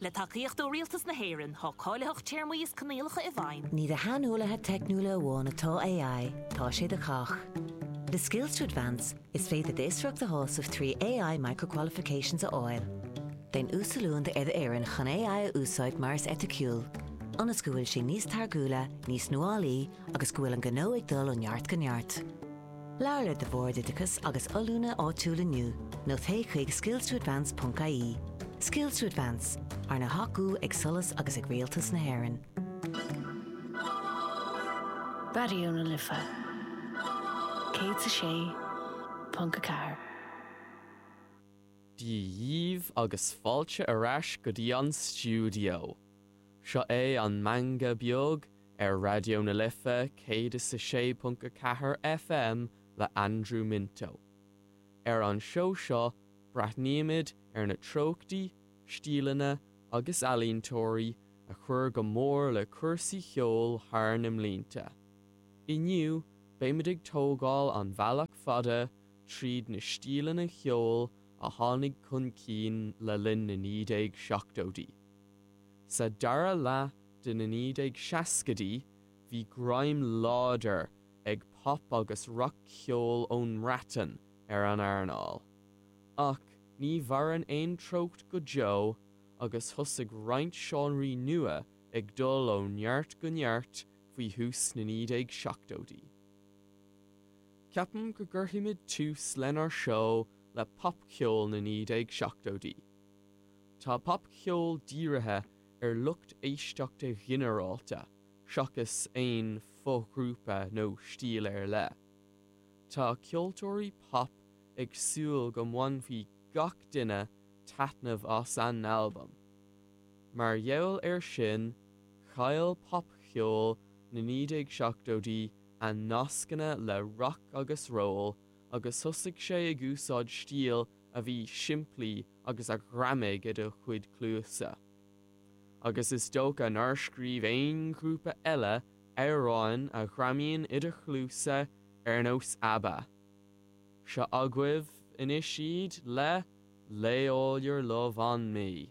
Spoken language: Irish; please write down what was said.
Le tacaíocht ó Rialtas na hÉireann, tá cáilitheacht, téarmaí is coinníollacha i bhfeidhm. Ní do shaineolaithe teicniúla amháin atá AI, tá sé do chách. Le Skills to Advance, is féidir d'fhiosracht a shásamh trí AI Micro-Qualifications a fháil. Déan uasoiliúint ar d'fhoireann chun AI a úsáid go heiticiúil, ionas go bhfuil sé níos táirgiúla, níos nuálaí agus go bhfuil an gnó ag dul ó neart go neart. Labhair le do Bhord Oideachais agus Oiliúna áitiúil inniu nó téigh chuig skillstoadvance.ie. Skills to Advance, arna thacú ag SOLAS agus ag Rialtas na hÉireann. Dia dhíbh agus fáilte ar ais go dtí an stiúideo. Seo é an Meangadh Beag Ar Raidió na Life 106.4 FM le Andrew Minto. Ar an seó seo breathnaímid ar na treochtaí, stíleanna agus ealaíontóirí a chuir go mór le cúrsaí cheoil thar na mblianta. Inniu beimid ag tógáil an bhealach fada tríd na stíleanna cheoil a tháinig chun cinn le linn na 1970idí. Sa dara leath de na 1960idí bhí greim láidir ag pop agus rac-cheol ón mBreatain ar an earnáil. Ach ní mhaireann aon treocht go deo agus thosaigh roinnt seánraí nua ag dul ó neart go neart faoi thús na 1970idí. Ceapaim go gcuirfimid tús lenár seó le popcheol na 1970idí. Tá popcheol dírithe ar lucht éisteachta ghinearálta seachas aon fo-ghrúpa nó stíl ar leith. Tá ceoltóirí pop ag súil go mbainfidh gach duine taitneamh as a n-albam. Mar gheall air sin, chaill popcheol na 1970idí a nascanna le rac agus ról agus thosaigh sé ag úsáid stíl a bhí simplí agus a ghreamaigh i do chuid cluasa. Agus is dócha nár scríobh aon ghrúpa eile amhráin a ghreamaíonn i do chluasa ar nós Abba. Seo agaibh anois iad le Lay All Your Love On Me.